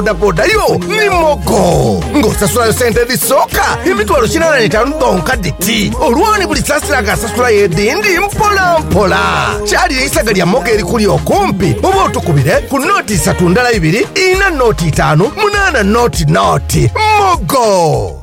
bodaboda yo ni mogo ng'osasulayo sente edhisooka emitwalo kinaana n'etaanu dhonka dhiti olwoni buli saasira nga asasulayo edhindi mpola mpola. Kyalire eisaga lya mogo erikuli okumpi oba otukubire ku nooti isatu ndala ibiri, ina nooti itaanu, munaana nooti nooti. Mogo!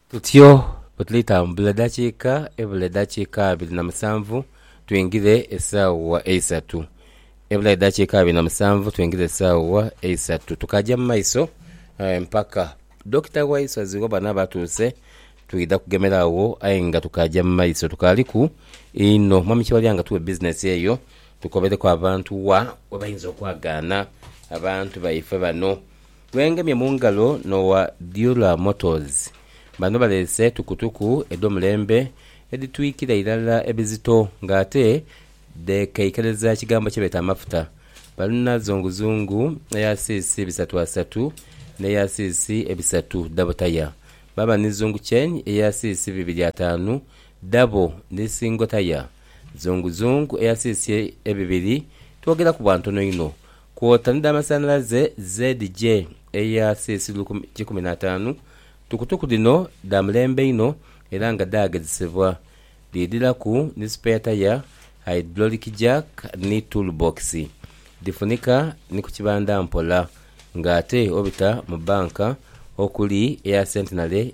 Tutyo bwe tulitambula eddakiika ebula eddakiika abiri na musanvu twingire esaawa eisatu. Ebula eddakiika abiri na musanvu twingire esaawa eisatu tukaja mu maiso mpaka Dokita Waiswazi bwe bwanaaba atuuse twidha kugemera agho aye nga tukaja mu maiso tukaaliku inho. Mwami Kiwalya nga tuwe bizinesi eyo tukobereku abantu wa we bayinza okwagaana abantu baife bano. Gwengemye mu ngalo n'owa Diola Motors. Bano baleese tukutuku edh'omulembe edhitwikira irala ebizito nga ate dheekeikereza ekigambo kyebeeta amafuta. Balina zunguzungu eya siisi bisatu asatu n'eya siisi ebisatu dhabo taya. Baaba ni zungu chain eya siisi bibiri ataanu dhabo ni singo taya. Zunguzungu eya siisi ebibiri twogeraku bwa ntono inho. Kwota ni dha masanhalaze ZJ eya CC lukumi kikumi na ataanu. Tukutuku dhino dha mulembe inho era nga dhaagezesebwa. Dhiidhilaku ni spare tyre, hydraulic jack ni tool box. Dhifunika ni ku kibanda mpola nga ate obita mu banka okuli eya Centenary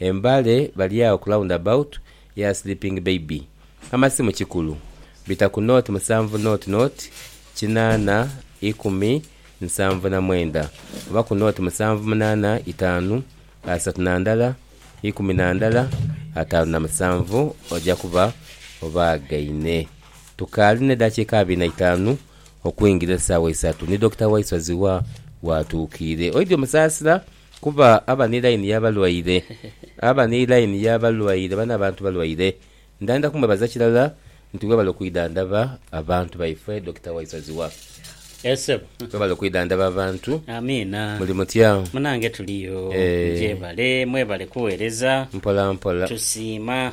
E Mbale bali agho ku round about ya Sleeping Baby. Amasimu kikulu. Bita ku nought musanvu nought nought kinaana ikumi nsanvu na mwenda oba ku nought musanvu munaana itaanu asatu na ndala ikumi na ndala ataanu na musanvu oja kuba obaagaine. Tukaali n'edaakiika abiri na itaanu okwingira esaawa isatu ni Dokita Waiswa Zziwa w'atuukiire. Oidhi omusaasira? Kuba aba ni line y'abalwaire. Aba ni line y'abalwaire bano abantu balwaire. Ndhanda kumwebaza kirala nti webale okwidhandhaba abantu baifwe Dokita Waisaziwa. Eeh sebo. Webale okwidhandhaba abantu. Amiina. Muli mutya? Munange tuliyo. Eeh. Gyebale. Mwebale kughereza. Mpola mpola. Tusiima.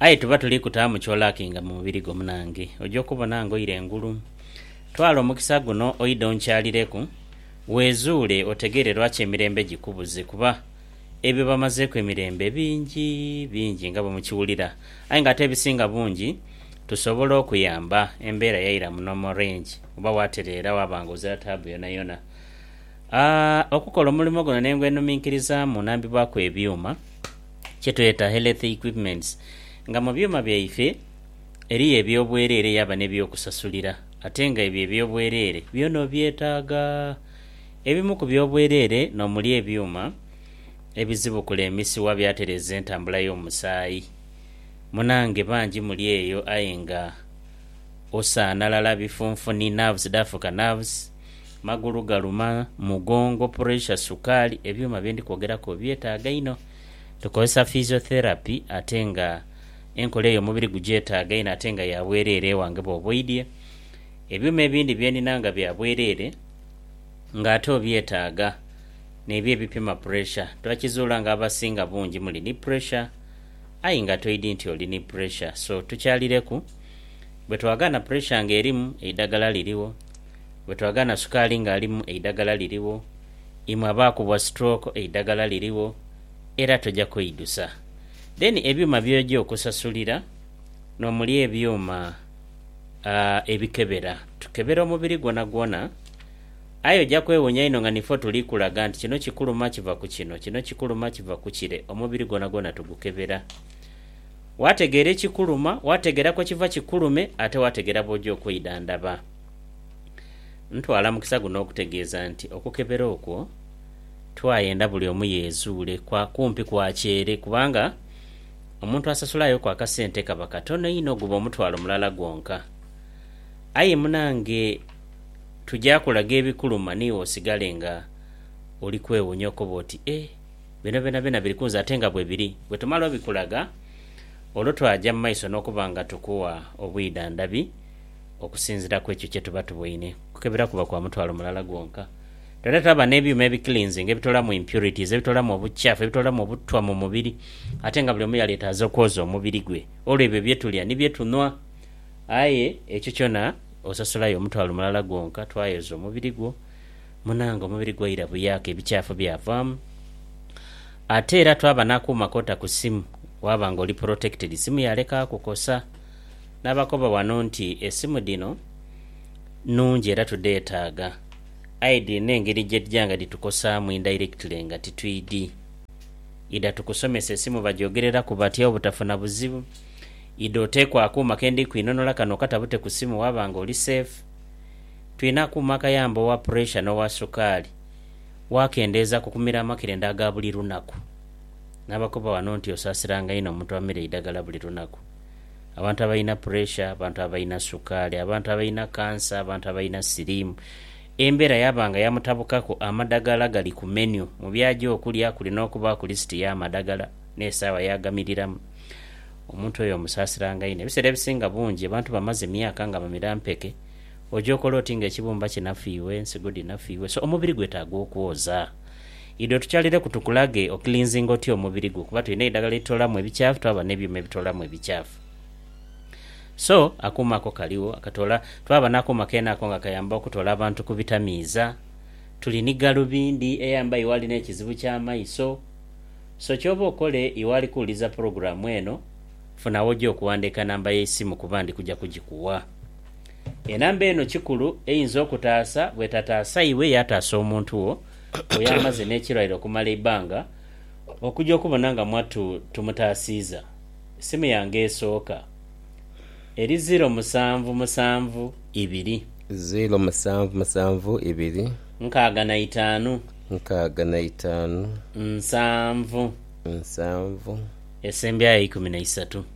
Aye tuba tuli kutaamu ky'olaakinga mu mubiri gwo munange, oja okubona ng'oira engulu. Twala omukisa guno oidhe onkyalireku, weezuule otegeere lwaki emirembe gikubuze kuba ebyo bamazeeku emirembe bingi bingi nga bwe mukiwulira. Aye ng'ate ebisinga bungi tusobola okuyamba embeera yaira mu normal range oba waatereera waaba ng'ozira taabu yonayona. A Okukola omulimo guno n'eng'wenuminkirizaamu nambibwaku ebyuma. kyetweta health equipments nga mu byuma byaife eriyo ebyobwerere yaba nebyokusasulira ate nga ebyo ebyobwerere byona obyetaaga. Ebimu ku byobwerere nomuli ebyuma ebizibukula emisiwa byatereza entambula yomusaayi. Munange bangi muli eyo aye nga osaanalala bifunfuni, nerves dhafuka nerves. Magulu galuma, mugongo, puresha, sukaali, ebyuma bye ndi kwogeraku obyetaaga inho. Tukozesa physiotherapy ate nga enkola eyo omubiri gugyetaaga inho ate nga ya bwereere ewange bw'oba oidhie. Ebyuma ebindi bye ndina nga bya bwereere ng'ate obyetaaga n'ebyo ebipima puresha. Twakizuula nga abasinga bungi muli ni puresha aye nga toidhi nti oli ni puresha so tukyalireku. Bwe twagaana puresha ng'erimu, eidagala lirigho. Bwe twagaana sukaali ng'alimu eidagala lirigho, imwe abaakubwa stroke eidagala lirigho era toja kweidusa. Then ebyuma byoja okusasulira n'omuli ebyuma aah ebikebera, tukebera omubiri gwonagwona aye oja kwewuunya inho nga nife otuli kulaga nti kino kikuluma kiva ku kino, kino kikuluma kiva ku kire, omubiri gwonagwona tugukebera. Waategeera ekikuluma, waategeera kwe kiva kikulume ate waategeera bw'oja okweidhandhaba. Ntwala mukisa guno okutegeeza nti okukebera okwo twayenda buli omu yeezuule kwa kumpi kwakyere kubanga omuntu asasulayoku akasente kaba katono inho guba omutwalo mulala gwonka. Aye munange tuja kulaga ebikuluma niiwe osigale nga oli kwewuunya okoba oti ee bino byonabyona biri kunze ate nga bwebiri. Bwetumala obikulaga olwo twaja mu maiso n'okuba nga tukuwa obwidhandhabi. Okusinzira ku ekyo kye tuba tuboine, okukebera kuba kwa mutwalo mulala gwonka. Twena twaba n'ebyuma ebikiliinzinga ebitoolamu impurities, ebitoolamu obukyafu, ebitoolamu obutwa mu mubiri. Ate nga buli omu yalyetaaza okwoza omubiri gwe olw'ebyo bye tulya ni bye tunhwa. Aye ekyo kyona osasulayo omutwalo mulala gwonka, twayoza omubiri gwo. Munange, omubiri gwaira buyaaka ebikyafu byavaamu. Ate era twaba n'akuuma k'ota ku simu, waaba ng'oli protected, simu yaaleka kukosa. Nabakoba ghano nti esimu dhino nnungi era tudheetaaga aye dhirina engeri gye dhija nga dhitukosaamu indirectly nga titwidhi. Idha tukusomese esimu bagyogereraku batya obutafuna buzibu. Idha oteeku akuuma ke ndi kwinhonhola kano okatabute ku simu waaba nga oli safe. Twina akuuma akayamba owa puresha n'owa sukaali, waakendeeza ku kumira amakirende aga buli lunaku. Nabakoba ghano nti osaasiranga inho omuntu amira eidhagala buli lunaku. Abantu abalina puresha, abantu abalina sukaali, abantu abalina kansa, abantu abalina siriimu. Embeera yaaba nga yamutabukaku, amadagala gali ku menyu. Mu by'aja okulya kuli n'okubaaku lisiti y'amadagala n'esaawa y'agamiriramu. Omuntu oyo omusaasiranga inho. Ebiseera ebisinga bungi abantu bamaze emyaka nga bamira mpeke, oja okola oti ng'ekibumba kinafiirwa, ensigo dhinafiirwa. So, omubiri gwetaaga okwoza. Idho tukyalireku tukulage okilinzinga otya omubiri gwo kuba tulina eidagala eritoolamu ebikyafu twaba n'ebyuma ebitoolamu ebikyafu. So, akuuma ako kaligho akatoola, twaba n'akuuma keene ako nga kayamba okutoola abantu ku bitamiiza. Tuli ni galubindi eyamba iwe ali n'ekizibu ky'amaiso. So, ky'oba okole iwe ali kuwuliriza pulogulaamu eno, funa w'oja okuwandiika namba y'eisimu kuba ndi kuja kugikuwa. Enamba eno kikulu eyinza okutaasa bw'etataasa iwe yaataasa omuntu wo oy'amaze n'ekirwaire okumala eibbanga okuja okubona nga mwattu tumutaasiiza. Simu yange esooka eri ziro musanvu musanvu ibiri. Ziro musanvu musanvu ibiri. Nkaaga na itaanu. Nkaaga na itaanu. Nsanvu. Nsanvu. Esembyayo eikumi na isatu.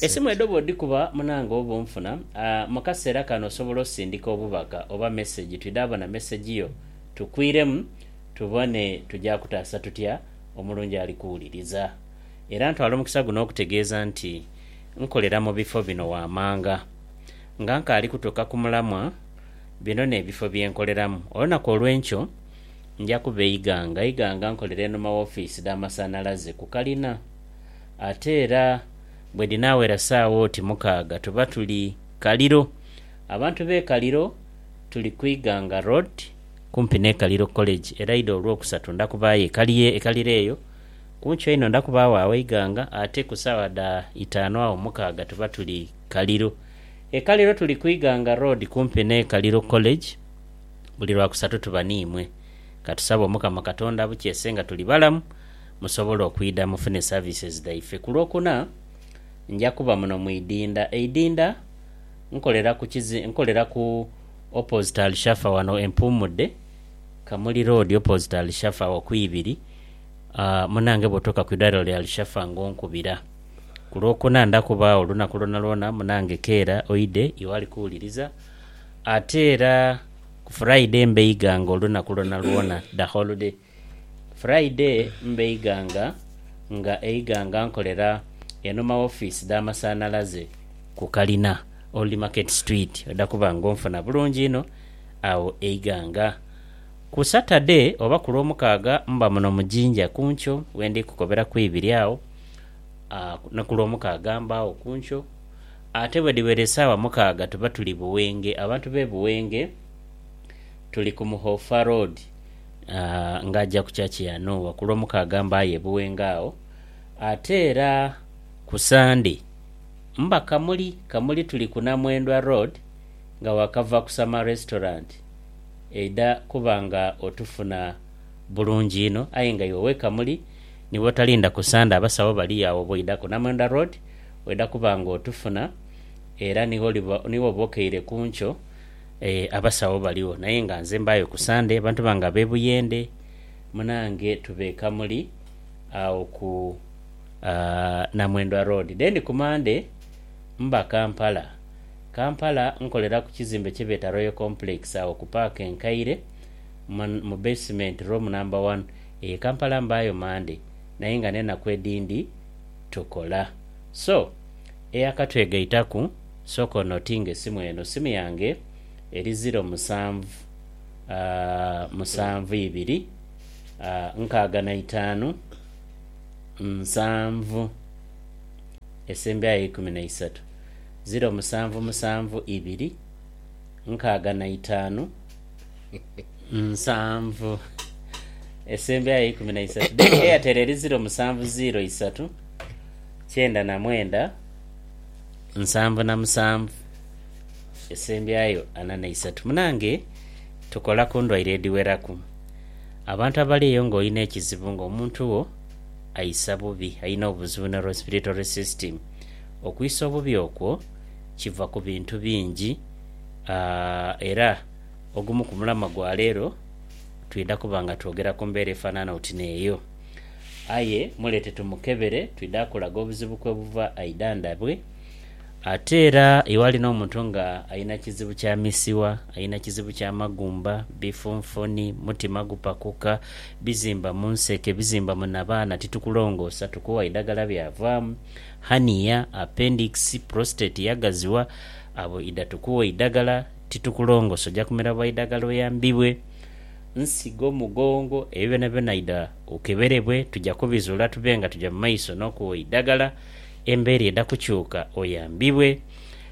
Esimu edho bw'odhikuba munange oba onfuna. Mu kaseera kano osobola osindika obubaka oba mesegi twidhabona mesegi yo tukwiremu tubone tuja kutaasa tutya omulungi ali kuwuliriza. Era ntwala omukisa guno okutegeeza nti nkolera mu bifo bino waamanga nga nkaali kutuuka ku mulamwa. Bino n'ebifo bye nkoleramu. Olunaku olw'enkyo nja kuba e Iganga. Iganga nkolera enhuma w'ofiisi dh'amasanhalaze ku kalina. Ate era bwe dhinaawera saawa oti mukaaga tuba tuli Kaliro. Abantu b'e Kaliro tuli ku Iganga Road kumpi n'e Kaliro College era eidha Olwokusatu nda kubaayo e Kalie e Kaliro eyo. Ku nkyo einho nda kubaagho agho Iganga ate ku saawa dha itaanu agho mukaaga tuba tuli Kaliro. E Kaliro tuli ku Iganga Road kumpi n'e Kaliro College. Buli Lwakusatu tuba n'imwe. Ka tusabe Omukama Katonda abukyese nga tuli balamu. musobole okwidha mufune services dhaife. Ku Lwokuna nja kuba muno mu idinda. Eidinda nkolera ku kizi, nkolera ku opposite Alshafa wano e Mpuumudde, Kamuli Road opposite Alshafa awo ku ibiri. Munange bw'otuuka ku idwaliro lya Alshafa nga onkubira. Ku Lwokuna nda kuba agho olunaku lwonalwona munange keera oidhe iwe ali kuwuliriza. Ate era ku Friday mbeighanga olunaku lwonalwona, the whole day. Friday mba Iganga nga Iganga nkolera eno ma office dha masanalaze ku kalina Old Market Street oda kuba nga onfuna bulungi inho agho Iganga. Ku Saturday oba ku lwomukaaga mba muno mu Jinja kunkyo wendi kukobera ku ibiri agho ni ku lwomukaaga mbagho kunkyo ate bwedhiwera esawa mukaaga tuba tuli Buwenge. Abantu be Buwenge tuli ku Muhofa Road ng'aja ku church ya Nuuwa ku Lwomukaaga mba aye Buwenga agho. Ate era ku Sunday mba Kamuli. Kamuli tuli ku Namwendwa Road nga wakava ku Summer Restaurant eidha kuba nga otufuna bulungi inho. Aye nga iwe ow'e Kamuli ni bwotalinda ku Sunday abasawo bali agho bw'oidha ku Namwendwa Road oidha kuba ng'otufuna era ni woliba, ni woba okeire ku nkyo. Eeh abasawo baligho naye nga nze mbaayo ku Sunday abantu bange ab'e Buyende munange tuba e Kamuli agho ku Namwendwa Road. Then ku Monday mba Kampala. Kampala nkolera ku kizimbe kye beeta Royal Complex agho ku Park e Nkaire mu basement room number one. Eeh Kampala mbaayo Monday naye nga n'enaku edhindi tukola. So. Eyakatwegaitaku, sooka onotinge esimu eno, simu yange eri ziro musanvu musanvu ibiri nkaaga na itaanu nsanvu esembyayo eikumi na isaatu, ziro musanvu musanvu ibiri nkaaga na itaanu. Nsanvu esembyayo eikumi na isatu then Airtel eri ziro musanvu ziro isatu kyenda na mwenda nsanvu na musanvu esembyayo ana na isatu munange tukola kundwaire edhiweraku abantu abali eyo nga olina ekizibu nga omuntu wo aisa bubi alina obuzibu ni respiratory system okwisa obubi okwo kiva kubintu bingi era ogumu ku mulama gwa leero twidha kuba nga twogera ku mbeera efanana oti n'eyo. Aye muleete tumukebere, twidha kulaga obuzibu kwe buva aidhandhabwe. Ate era iwali n'omuntu nga alina kizibu kya misiwa, alina kizibu kya magumba, bifunfuni, mutima gupakuka, bizimba mu nseke, bizimba mu nabaana, titukulongoosa, tukuwa idagala byavaamu, hernia, appendix, prostate yagaziwa, Abo idha tukuwa eidagala titukulongosa oja kumira bwa idagala oyambibwe nsigo mugongo ebyo byona byona idha okeberebwe tuja kubizula tube nga tuja mu maiso nokuwa eidagala embera edha kukyuka oyambibwe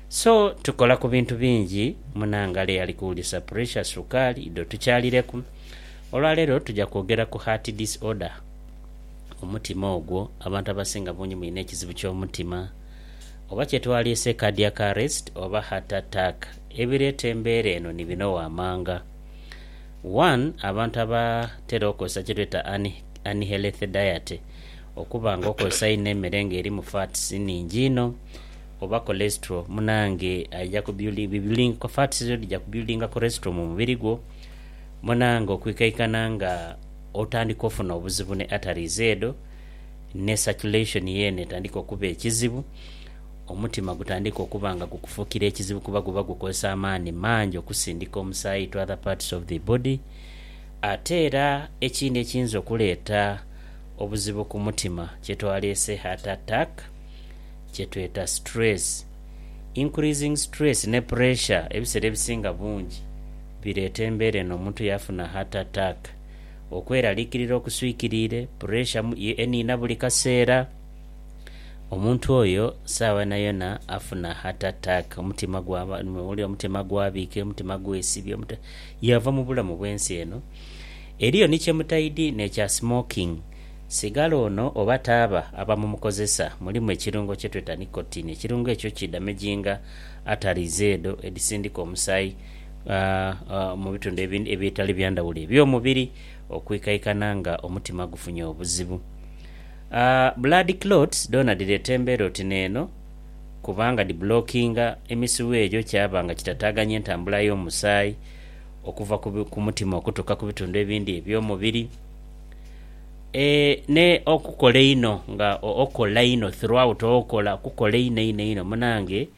so tukola ku bintu bingi munangale ali kuwulisa pressure sukaali idho tukyalireku olwalero tuja kwogera ku heart disorder omutima ogwo abantu abasinga bungi mulina ekizibu kyomutima. Oba kye twaliise cardiac arrest oba heart attack, ebireeta embeera eno ni bino waamanga, One, abantu abatera okozesa kye tweta unhealthy diet, okuba nga okozesa inho emere nga erimu fats nhingi inho oba cholesterol munange aija ku buildinga, fats edho dhija ku buildinga cholesterol mu mubiri gwo munange okwikaikana nga otandika ofuna obuzibu ni arteries edho. ne circulation yeene etandike okuba ekizibu, omutima gutandike okuba nga gukufukira ekizibu kuba guba gukozesa amaani mangi okusindika omusaayi to other parts of the body. Ate era ekindi ekiyinza okuleeta obuzibu ku mutima kyetwaleese heart attack kyetweta stress. Increasing stress ne pressure ebisera ebisinga bungi bireeta embeera eno omuntu yafuna heart attack. Okweraliikirira okuswikiriire, puresha ye eniina buli kaseera. Omuntu oyo saagha yonayona afuna heart attack, omutima gwaba oli omutima gwabiika, omutima gwesibya, yaava mu bulamu bw'ensi eno. Eriyo ni kye mutaidhi n'ekya smoking. Sigala ono oba taaba abamumukozesa mulimu ekirungo kye tweta nicotine. Ekirungo ekyo kidamaginga aterizi edho edhisindika omusaayi. mu bitundu ebitali bya ndhawulo eby'omubiri okwikaikana nga omutima gufunye obuzibu. Blood clots dhoona dhireeta embeera oti n'eno kubanga dhibulokinga emisiwa egyo kyaba nga kitataaganya entambula y'omusaayi okuva ku mutima okutuuka ku bitundu ebindi eby'omubiri. N'okukola einho nga okola inho throughout, okola okukola einho einho einho munange.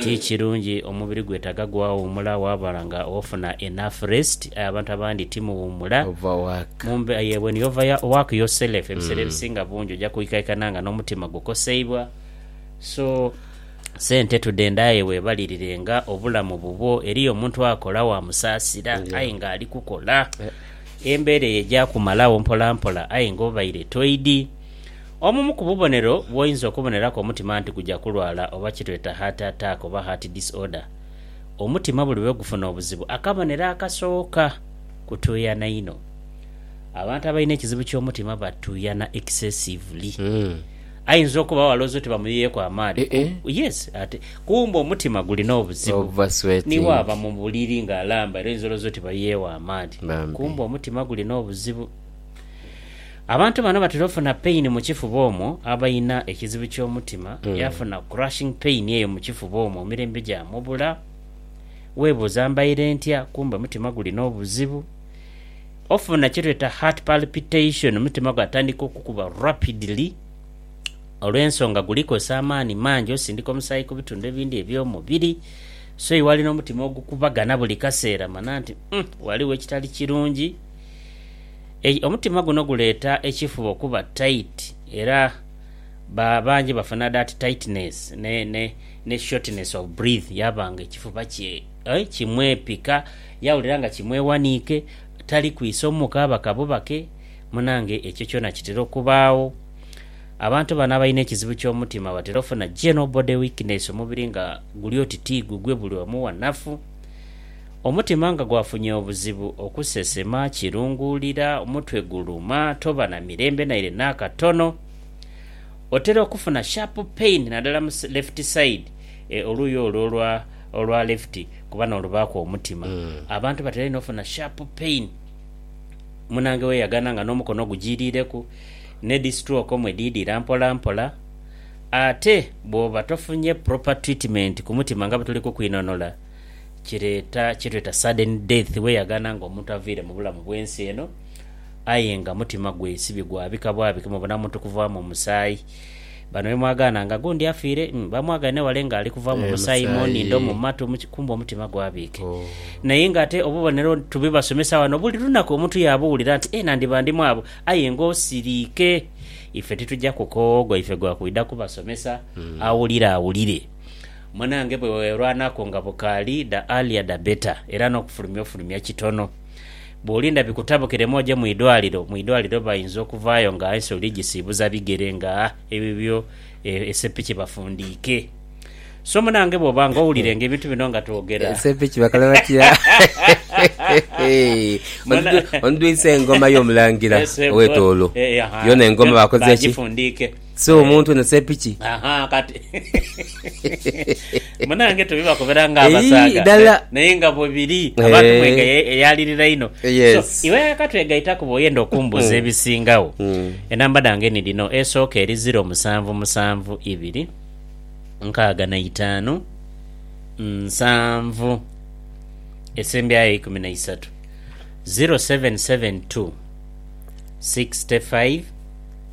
Ti kirungi, omubiri gwetaaga gwawuumula waaba nga ofuna enough rest. Aye abantu abandi ti muwuumula. Overwork. Yee, when you overwork yourself ebiseera ebisinga bungi oja kwikaikana nga n'omutima gukoseibwa. So, sente tudhende aye weebalirirenga obulamu bubwo. Eriyo omuntu akola waamusaasira aye ng'ali kukola. Embeera eyo eja kumalagho mpolampola aye ng'obaire toidhi. Obumu ku bubonero bwoyinza okuboneraku omutima nti guja kulwala oba kyetweta heart attack oba heart disorder. Omutima buli bwegufuna obuzibu akabonero akasooka kutuuyana inho. Abantu abalina ekizibu kyomutima batuuyana excessively. Ayinza okuba awo alowooza oti bamuyiyeku amaadhi ku yes ate kumbe omutima gulina obuzibu niwo aba mubuliri nga alamba era oyinza olowooza oti bayiyewo amaadhi kumbe omutima gulina obuzibu. Abantu bano batera ofuna pain mu kifuba omwo, abalina ekizibu ky'omutima yafuna crushing pain eyo mu kifuba omwo emirembe gyamubula. Webuuza mbaire ntya kumbe mutima gulina obuzibu. Ofuna kyetweta heart palpitation omutima gwatandika okukuba rapidly olw'ensonga guli kozesa amaani mangi osindika omusaayi ku bitundu ebindi eby'omubiri so iwali n'omutima ogukubagana buli kaseera mana nti uhm ghaligho ekitali kirungi. Omutima guno guleeta ekifuba okuba tight era ba bangi bafuna that tightness ne shortness of breath yaba nga ekifuba kye kimwepika yawulira nga kimwewaniike tali kwisa omuuka aba kabubake munange ekyo kyona kitera okubaagho. Abantu bano abalina ekizibu ky'omutima batera ofuna general body weakness omubiri nga guli oti tigugwe buli omu wanafu. Omutima nga gwafunye obuzibu okusesema, kirunguulira, omutwe guluma, toba na mirembe naire n'akatono. Otera okufuna sharp pain nadala mu left side, oluuyi olwo olwa olwa left kuba n'olubaaku omutima. Abantu batera inho ofuna sharp pain munange weyagana nga n'omukono gujiiriireku, n'edhi stroke omwo edhiidhira mpolampola. Ate bwoba tofunye proper treatment ku mutima nga bwetuli kukwinonhola, kireeta kyetweta sudden death weyaghana nga omuntu avaire mubulamu bwensi eno aye nga mutima gwe sibi gwabika bwabike mubona muntu kuvaamu omusaayi bano bemwagaana nga gundi afiire bamwagaine wale nga alikuvamu omusaayi munindho mumatu kumbe omutima gwabike naye nga ate obubonero tubibasomesa wano buli lunaku omuntu yabuwulira nti eeh nandiba ndi mwabo aye nga osiriike ife tituja kukoowa ogwaife gwakwidha kubasomesa awulira awulire. Munange bwe weerwanaku nga bukaali, the earlier the better, era n'okufulumya ofulumya kitono. Bw'olinda bikutabukiremu oje mu idwaliro, mu idwaliro bayinza okuvaayo nga ensi oli gisiibuza bigere nga ebibyo esepiki bafundiike. So munange bw'oba nga owulira nga ebintu bino nga twogera. Esepiki bakole batya? Ondwise engoma y'omulangira ow'etoolo. Yoona engoma baakoze ki? Bagifundiike. Si omuntu eno sepiki. Ahaa kati munange tubibakubira nga abasaadha dala naye nga bwebiri abantu eh. mwega eyalirira ino eh, so iwe akatwegaitaku bwoyenda okumbuuza hmm. ebisingagho hmm. enamba dhange ni dhino esooka eri ziro musanvu musanvu ibiri nkaaga na itaanu nsanvu esembyayo ikumi na isatu 0772 65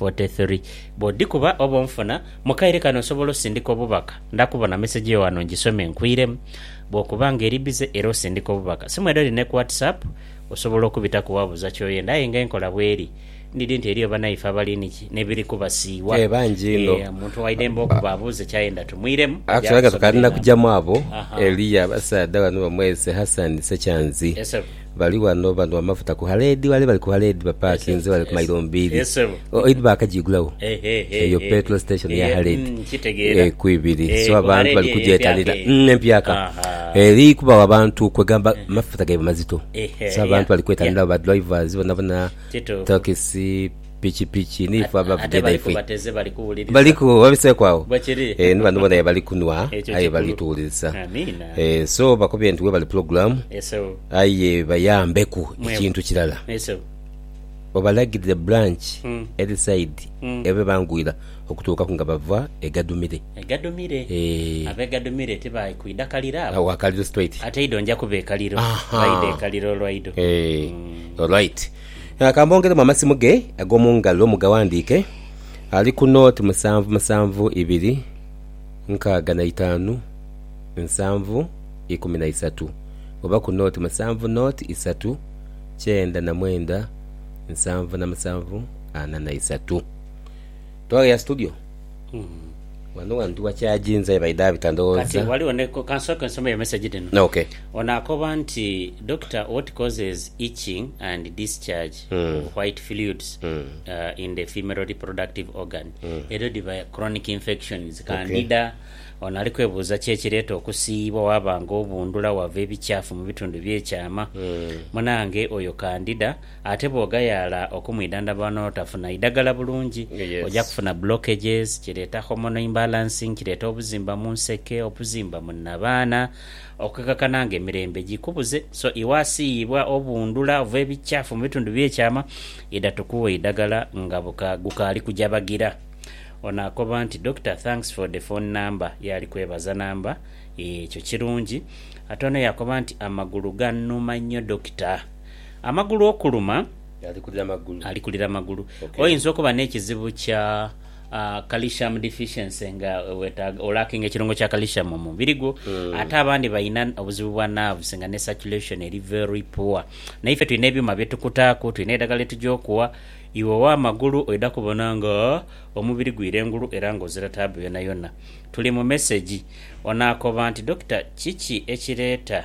43 bw'odhikuba oba onfuna. Mu kaire kano osobola osindika obubaka. Ndakubona mesegi yo ghano ngisome nkwiremu. Bw'okuba nga eri bize era osindika obubaka, simu edho dhine ku WhatsApp, osobola okubitaku waabuuza ky'oyenda. Aye nga enkola bw'eri, ndidhi nti eriyo banaife abali niki n'ebiri kubasiiwa. Ee, bangi inho. Ee, omuntu waidembe okuba abuuze ky'ayenda tumwiremu. Actually nga tukaali na kujamu abo, eliyo abasaadha bano bamwese Hassan Ssekyanzi. Yes, sebo. Bali ghano banhwa amafuta ku haleedi ghale. Bali ku haleedi bapakinze ghale ku mailo mbiri. Oidhi baakajiigulagho. Eyo petulo siteshoni ya haleedi. Ku ibiri. So abantu bali kugyetanira. Empyaka. Eri kubagho abantu kwegamba amafuta gaibwe mazito. So abantu bali kwetanira agho, badrivazi bonabona, takisi. pikipiki ni ffe abavuga edhaife. Baliku babiseeku agho. Eeh ni bano bona aye bali kunhwa aye bali tuwulirisa. Eeh so bakubye nti webale program aye bayambeku ekintu kirala obalagirire branch eri side ebe bangwira okutuukaku nga bava e Gadumire. Eeh. Agho wa kaliro straight. Ahaa eeh alright. Nga kamwongeremu amasimu ge ag'omu ngalo mugaghandiike, ali ku nooti musanvu musanvu ibiri nkaaga na itaanu nsanvu ikumi na isatu oba ku nooti musanvu nooti isatu kyenda na mwenda nsanvu na musanvu ana na isatu. Twagheya studio wano wantu wakyaginze aye baidha bita ndhowooza. Kati waliwo ne kansooke nsomeyo message dhino. Ok. Ono akoba nti Doctor what causes itching and discharge of white fluids in the female reproductive organ? Edho dhiba chronic infections kandida Ono ali kwebuuza ki ekireeta okusiiyibwa waba nga obundhula wava ebikyaafu mu bitundu bye kyaama. Munange oyo kandida Ate bw'ogayaala okumwidhandhaba wano n'otafuna idagala bulungi, oja kufuna blockages, kireeta hormonal imbalancing, kireeta obuzimba mu nseke, obuzimba mu nnabaana, okukekakana nga emirembe gikubuze. So iwe asiiyibwa obundhula ova ebikyafu mu bitundu eby'ekyama, idha tukughe eidagala nga gukaali kuja bagira. Ono akoba nti, Doctor, thanks for the phone number. Yaali kwebaza namba. Eeh, ekyo kirungi. Ate ono yaakoba nti, Amagulu gannuma nnyo, Dokita. Amagulu okuluma, ali kulira magulu. Oyinza okuba n'ekizibu kya calcium deficiency nga wetaaga, olakinga ekirungo kya calcium mu mubiri gwo. Ate abandi balina obuzibu bwa nerves nga ne circulation eri very poor. Naife tulina ebyuma bye tukutaaku, tulina eidagala lye tugya okuwa. Iwe ow'amagulu oidha kubona nga omubiri gwira engulu era nga ozira taabu yonayona. Tuli mu mesegi. Onaakoba nti, Dokita, kiki ekireeta.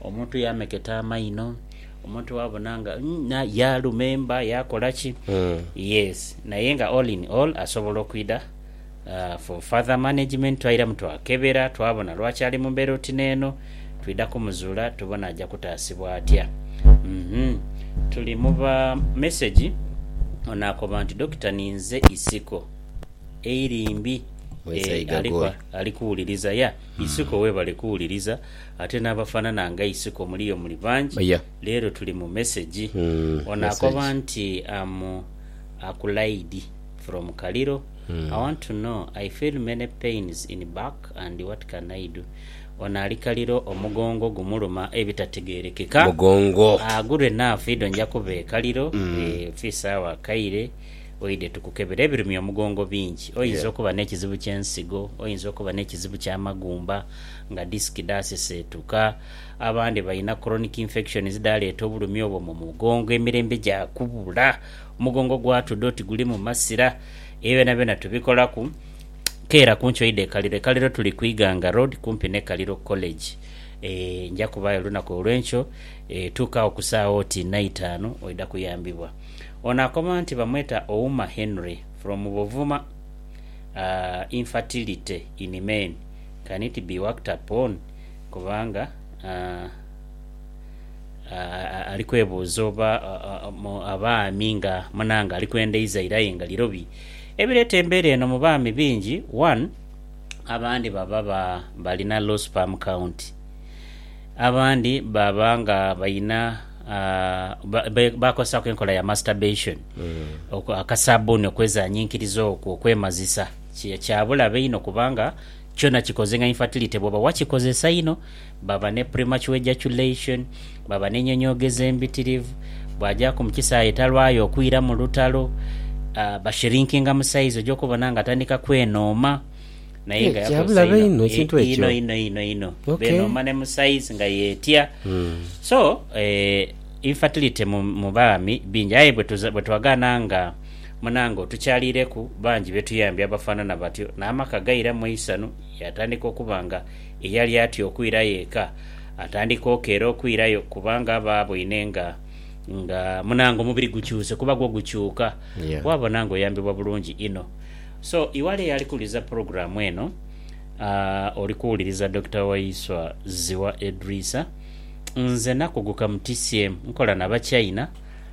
Omuntu yaameketa amaino, omuntu waabona nga na yaalumemba, yaakola ki. Yes, naye nga all in all asobola okwidha for further management. Twairamu twakebera twabona lwaki ali mu mbeera oti n'eno, twidha kumuzuula tubone aja kutaasibwa atya. Tuli mu ba mesegi, ono akoba nti, Dokita ninze isiko eiri mbi. Ali kuwuliriza, yeah. Isiko weebale kuwuliriza. Ate n'abafaanana nga Isiko muliyo muli bangi. Leero tuli mu mesegi. Ono akoba nti am Akulaidi from Kaliro, I want to know, I feel many pains in back and what can I do? Ono ali Kaliro omugongo gumuluma ebitategerekeka. Agure naafa idho nja kuba e Kaliro fi saawa kaire oidhe tukukebere. Ebirumya omugongo bingi. Oyinza okuba n'ekizibu ky'ensigo, oyinza okuba n'ekizibu ky'amagumba. nga disiki dhaaseseetuka, abandi balina chronic infections dhaaleeta obulumi obwo mu mugongo emirembe gya kubula. Omugongo gwatudha oti gulimu masira. Ebyo byonabyona tubikolaku. Keera ku nkyo oidhe e Kaliro. E Kaliro tuli ku Iganga Road kumpi ni Kaliro College. Nja kubaayo olunaku olw'enkyo. Tuuka agho ku saagha oti naitaanu oidha kuyambibwa. Ono akoma nti bamweta Ouma Henry from Buvuma Infertility in men. can it be worked upon kubanga ali kwebuuza oba abaami nga munange ali kwenda izaire aye nga lirobi. Ebireeta embeera eno mu baami bingi one abandi baba balina low sperm count, abandi baba nga balina bakozesaaku enkola ya masturbation akasabbuni okwezanyinkiriza okwo okwemazisa. Kye kya bulabe inho kubanga kyona kikoze nga infertility bwoba wakikozesa inho, baba ne premature ejaculation, baba n'enyonyoogeza embitirivu, bwagyaku mu kisaayi talwayo okwira mu lutalo, bashrinkinga mu size oja okubona nga atandika kwenooma naye nga yakozesa inho inho inho inho inho benooma ne mu size nga yetya so infertility mu baami bingi aye bwetwagana nga Munange otukyaliireku bangi be tuyambye abafaanana batyo n'amaka gairamu eisanhu yaatandika okuba nga eyali atya okwirayo eka atandika okeera okwirayo kubanga aba aboine nga nga munange omubiri gukyuse kuba gwo gukyuka Yeah. waabona ng'oyambibwa bulungi inho. So iwali eyali kuwuliriza pulogulaamu eno aah, oli kuwuliriza Dokita Waiswa Zziwa Edrisa. Nze nakuguka mu TCM nkola na Bachina.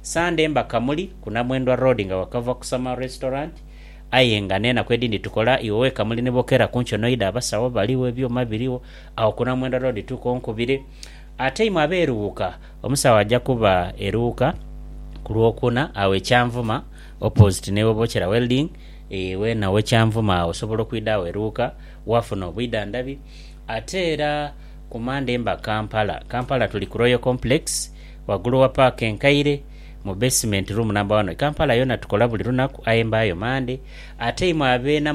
Sande mba Kamuli ku Namwendwa Road nga wakava ku Summer Restaurant aye nga n'enaku edindi tukola iwe we Kamuli ni bokera ku nki onoida abasawo baligho ebyuma birigho agho ku Namwendwa Road tuuka onkubire ate imwe abe Luuka omusawo aja kuba e Luuka ku Lwokuna agho e Kyanvuma opposite ni we bokera Welding ee wena owe Kyanvuma agho osobola okwida agho e Luuka wafuna obwidhandhabi ate era ku Mande mba Kampala Kampala tuli ku Royal Complex Ghagulu wa paaka enkaire, mu besimenti, ruumu namba wano e Kampala yona tukola buli lunaku aye mbaayo Mande ate imwe abeena.